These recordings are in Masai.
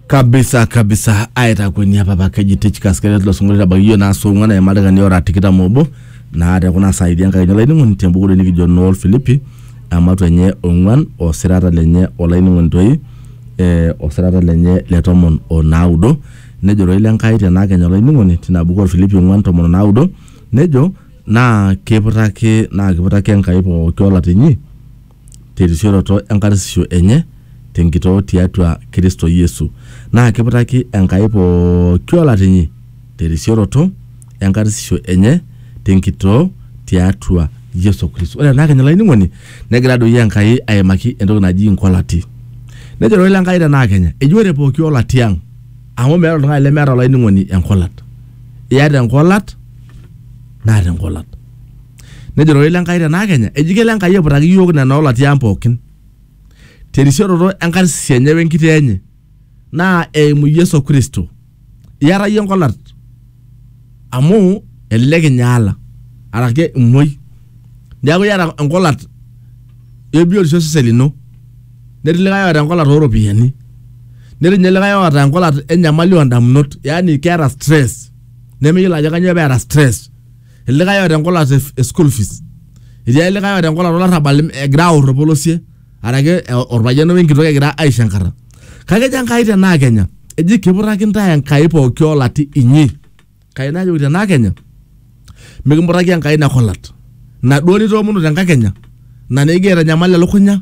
kabisa kabisa aitakueni apa apa keji tichkas keret lo singolio tabaki yiok naa song'ua naa emadakani ora tikitam obo naa tekuna saidi enkaini olainining'oni tembukulo nikijo nool filipi amatu enye ong'uan osirata lenye olainining'oni toi eh, osirata lenye le tomon onaudo nejo toi lenkai tenaa kenya olainining'oni tina buku olfilipi ong'uan tomon onaudo nejo naa kiputaki naa kiputaki enkai pooki olatinyi terisioroto enkarsisho enye tenkitoo tiatua Kristo Yesu. Naa kiputaki Enkai pooki olatinyi terisioroto enkarsisho enye tenkitoo tiatua Yesu Kristo. Ore tenakenya olainining'oni negira doi Enkai aimaki entoki naji inkolati. Nejo Ororei le Nkai tenakenya eji ore pooki olati ang' amu meeta oltung'ani lemeeta olainining'oni enkolat. Iyata enkolat naata enkolat. Nejo rorei le Nkai te naakenya, eji kelo Enkai aiputaki iyiook nena oolatia ang pookin te risioroto e nkarsisi enye we nkitoo enye naa eimu Yesu Kristo. Iyata iyie enkolat amu elelek inyaala araki imuoi. Neeku iyata enkolat e biotisho osesen lino. Netii likae oota enkolat oo ropiyiani. Netii ninye likae oota enkolat enyamali oo ndamunot yaani keeta stress nemeyiolo ajo kanyoo peeta stress likae oota enkolat e e school fees etii likae oota enkolat olarrabal im- egira aor orpolosie araki e- orpayian wenkitok egira aisho enkata kake ejo enkai tenaa kenya eji kiputaki ntae enkai pooki olati inyi kai najoki tenaa kenya mikimutaki enkai ina kolat inaduo nitoomonuo tenkakenya na nikigira aitanyamal elukunya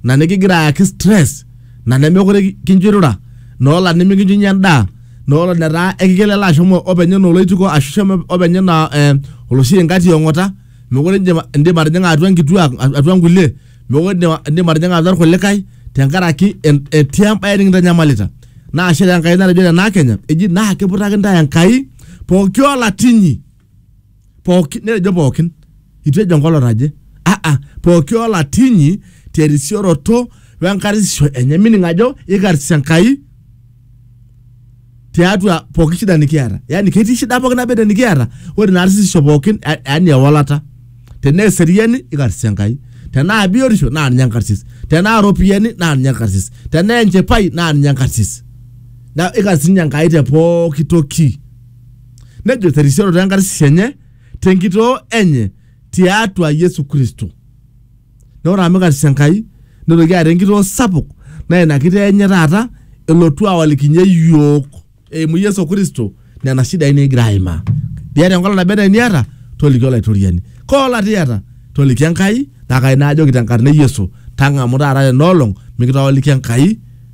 na nikigira ayaki stress na nemekure kincho irura nola nimikinchunye endaa nola netaa ekigil alo ashomo openy enaa oloitiko ashu shomo openy enaa eh, oloshi ingati ong'ota mekure indim indim atijing'a atua nkituak atua nkulie mekure indim indim atijing'a atua irkulikae tenkaraki en- etii embaye nikintanyamalita naa ashe taa Enkai natejo tenaa kenya eji naa kiputaki intae Enkai pooki olatinyi pooki netejo pookin itu ejo enkolong naje aa pooki olatinyi terisioroto wenkarsisho enye meaning ajo ikarsis enkai tiatua pooki shida nikiata yani ketii shida pooki naba enaa nikiata ore ina arsisho pookin ya- yani ewalata tenaa eseriani ikarsis enkai tenaa biotisho naa ninye enkarsis tenaa iropiyiani naa ninye enkarsis tenaa enchipai naa ninye enkarsis na ikarsis ninye enkai te pooki toki nejo terisioroto enkarsisho enye tenkitoo enye tiatua Yesu Kristo. Na ore amu karsisho Enkai, nitoki aata enkitoo sapuk na ina kitoo enye taata elotu awalikinye yiok eimu Yesu Kristo nena shidai nikigira aimaa. Iyata enkolong naba enaa eniata, toliki Olaitoriani. Kaa olata iyata? Toliki Enkai, na kai naa ajoki tenkarna e Yesu, tang'amu taata ena olong mikitawaliki Enkai.